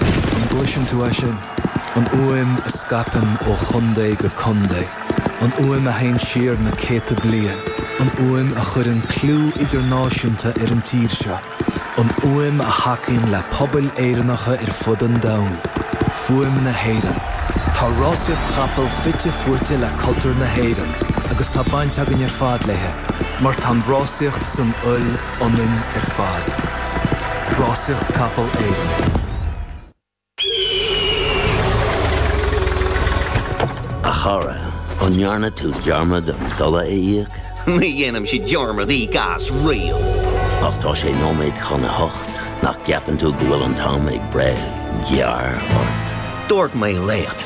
An gcloiseann tú é sin? An fhuaim a scaipeann ó chontae go contae. An fhuaim a théann siar na céadta bliain. An fhuaim a chuireann clú idirnáisiúnta ar an tír seo. An fhuaim a thacaíonn le pobail Éireannacha ar fud an domhain. Fuaim na hÉireann. Tá rásaíocht chapall fite fuaite le cultúr na hÉireann agus tá baint againn ar fad léi mar tá an rásaíocht san fhuil ionainn ar fad. Rásaíocht Capall Éireann. A chara, an ndearna tú dearmad an dola a íoc? Ní dhéanaimse dearmad íoc as riamh! Ach tá sé nóiméad chun a hocht, nach gceapann tú go bhfuil an t-am ag breith gearr ort? Dúirt mé leat!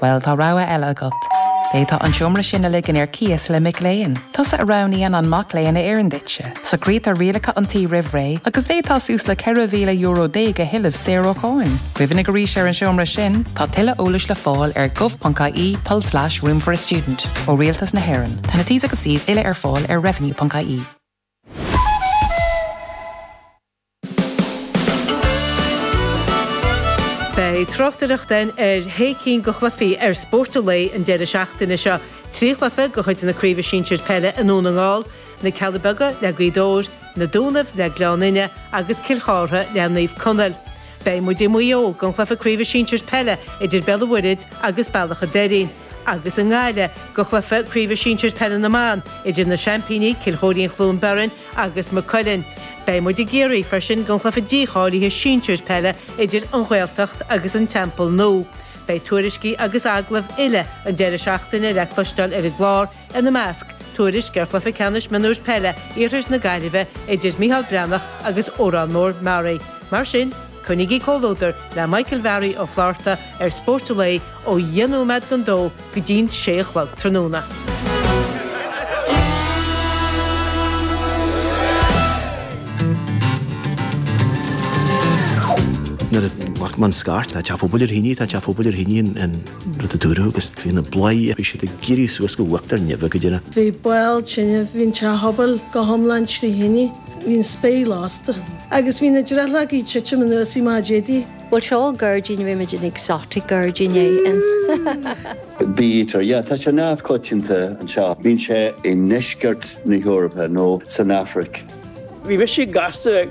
Bhuel, tá rogha eile agat. D'fhéadfá an tseomra sin a ligean ar cíos le mic léinn. Tusa a roghnaíonn an mac léinn a oireann duitse. Socraítear rialacha an tí roimh ré agus d'fhéadfá suas le €14,000 a thuilleamh saor ó cháin. Cuimhnigh arís ar an tseomra sin. Tá tuilleadh eolais le fáil ar gov.ie tulslais room for a student ó Rialtas na hÉireann. Tá na T's agus C's uile ar fáil ar revenue.ie. Beidh tráchtaireacht againn ar shé cinn de chluichí ar Spórt an Lae an deireadh seachtaine seo, trí chluiche de chuid na Craoibhe Sinsir Peile i nDún na nGall, Na Cealla Beaga le Gaoth Dobhair, Na Dúnaibh le Gleann Fhinne agus Cill Chartha le Naomh Conaill. Beidh muid i Maigh Eo don chluiche Craoibhe Sinsir Peile idir Béal an Mhuirthead agus Bealach an Doirín. agus i nGaillimh don chluiche craoibhe sinsir peile na mban idir na seaimpíní, Cill Chóirín-Chluain Bheirn, agus Maigh Cuilinn. Beidh muid i gCiarraí freisin don chluiche dícháilithe sinsir peile idir An Ghaeltacht agus An Teampall Nua. Beidh tuairiscí agus agallaimh uile an deireadh seachtaine le cloisteáil ar an gclár ina measc, tuairisc ar chluiche ceannais mionúir peile Iarthar na Gaillimhe idir Micheál Breathnach agus Órán Mór-Meáraí. Mar sin, coinnígí comhluadar le Michael Mhary Ó Flaithearta ar Spórt an Lae ó dheich nóiméad don dó go dtí'n sé a chlog tráthnóna. Nuair a bhí Mark Mann scarth, tá teach an phobail trí thine, tá teach an phobail trí thine. rud a dúradh agus bhí na bladhairí bhí siad ag éirí suas go uachtar neimhe go deireadh. Bhí baol tinneamh, bhí an teach pobail go hiomlán trí thine, bhí an spéir lasta agus bhí na drithleoga ag titim anuas í má d'fhéadfaí. Bhuel seo gairdín, rimid in exotic gairdín é in. Bítear, yeah, tá sé neamhchoitianta anseo. Bíonn sé i ndeisceart na hEorpa nó san Afraic. Bhí mise gasta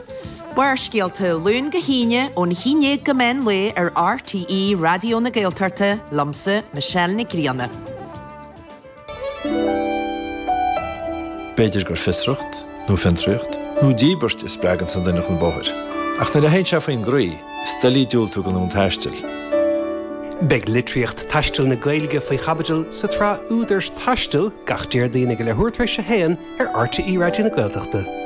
Barrscéalta, Ó Luan go hAoine, ón haon déag go meán lae ar RTÉ Raidió na Gaeltachta, liomsa, Michelle Nic Grianna. B'fhéidir gur fiosracht, nó fiontraíocht, nó díbirt a spreaganns an duine chun bóthair. Ach nuair a théann sé faoin gcroí, is doiligh diúltú don fhonn taistil. Beidh litríocht taistil na Gaeilge faoi chaibidil sa tsraith Údar Taistil gach Déardaoin ag a leithuair tar éis a haon ar RTÉ Raidió na Gaeltachta.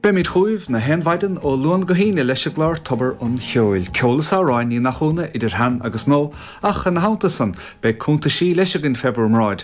Beimid chugaibh na haon mhaidin ó Luan go hAoine leis an gclár Tobar an Cheoil, ceol is amhráin Ní Mathúna idir shean agus nua, ach ina theannta san beidh cúntaisí leis againn fé bhur mbráid,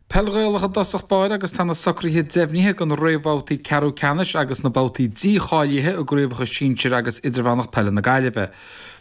Peil Ghaelach i dtosach báire agus tá na socruithe deimhnithe do na réamhbhabhtaí ceathrú ceannais agus na babhtaí dícháilithe i gcraobhacha sinsir agus idirmheánach peile na Gaillimhe.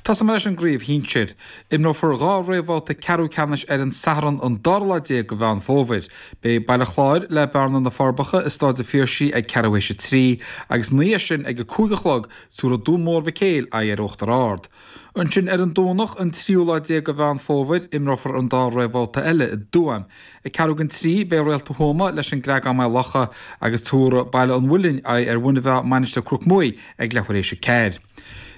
Tosóimid leis an gcraobh shinsir. Imreofar dhá réamhbhabhta ceathrú ceannais ar an Satharn an dara lá déag de Mheán Fómhair. Beidh Baile Chláir, le Bearna, Na Forbacha i Stáid an Phiarsaigh ag ceathrú théis a trí, agus ina dhiaidh sin ag a cúig a chlog tabharfaidh Dún Mór Mhic Éil aghaidh ar Uachtar Ard. Ansin ar an Domhnach an tríú lá déag de Mheán Fómhair imreofar an dá réamhbhabhta eile i dTuaim. Ag ceathrú don trí beidh Réalta Thuama leis an gCreagán-Maigh Locha agus tabharfaidh Baile an Mhuilinn aghaidh ar Mhuine Mheá Mainistir Chnoc Muaidh ag leath tar éis a ceathair.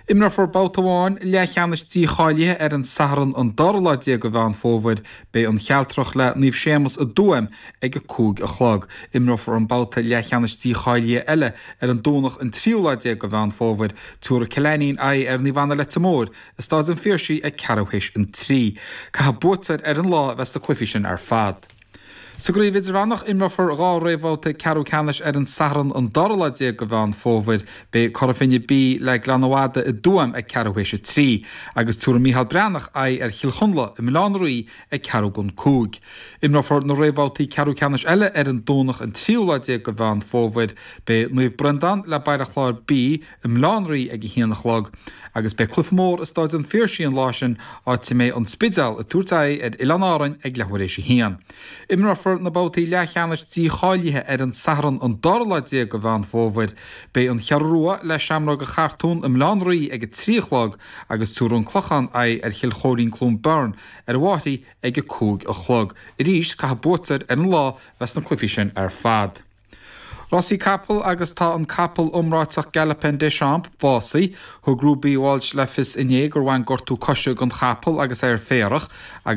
Imreofar babhta amháin leathcheannais dícháilithe ar an Satharn an dara lá déag de Mheán Fómhair. Beidh An Chealtrach le Naomh Séamus i dTuaim ag a cúig a chlog. Imreofar an babhta leathcheannais dícháilithe eile ar an Domhnach an tríú lá déag de Mheán Fómhair. Tabharfaidh Cill Ainnín aghaidh ar Naomh Anna Leitir Móir i Stáid an Phiarsaigh ag ceathrú théis an trí. Caithfidh buaiteoir ar an lá a bheith sna cluichí sin ar fad. Sa gCraobh Idirmheánach imreofar dhá réamhbhabhta ceathrú ceannais ar an Satharn an dara lá déag de Mheán Fómhair. Beidh Cora Finne B le Gleann na Madadh i dTuaim ag ceathrú théis a trí, agus tabharfaidh Mícheál Breathnach aghaidh ar Chill Chonla i mBaile Átha an Rí ag ceathrú don cúig. Imreofar na réamhbhabhtaí ceathrú ceannais eile ar an Domhnach an tríú lá déag de Mheán Fómhair. Beidh Naomh Breandán le Baile Chláir B i mBaile Átha an Rí ag a haon a chlog agus beidh cluife mór i Stáid an Phiarsaigh an lá sin áit a mbeidh An Spidéal ag tabhairt aghaidh ar Oileáin Árann ag leathuair éis a haon. Imreofar na babhtaí leathcheannais dícháilithe ar an Satharn an dara lá déag de Mheán Fómhair. Beidh An Cheathrú Rua le Seamróga Chartúin i mBaile Átha an Rí ag a trí a chlog agus tabharfaidh An Clochán aghaidh ar Chill Choirín-Cluain Bheirn ar an bPrairie ag a cúig a chlog. Arís caithfidh buaiteoir ar an lá bheith sna cluifí sin ar fad. Rásaí capall agus tá an capall iomráiteach Galopin Des Champs básaithe. Thug Ruby Walsh le fios inné gur bhain gortú coise don chapall agus é ar féarach agus.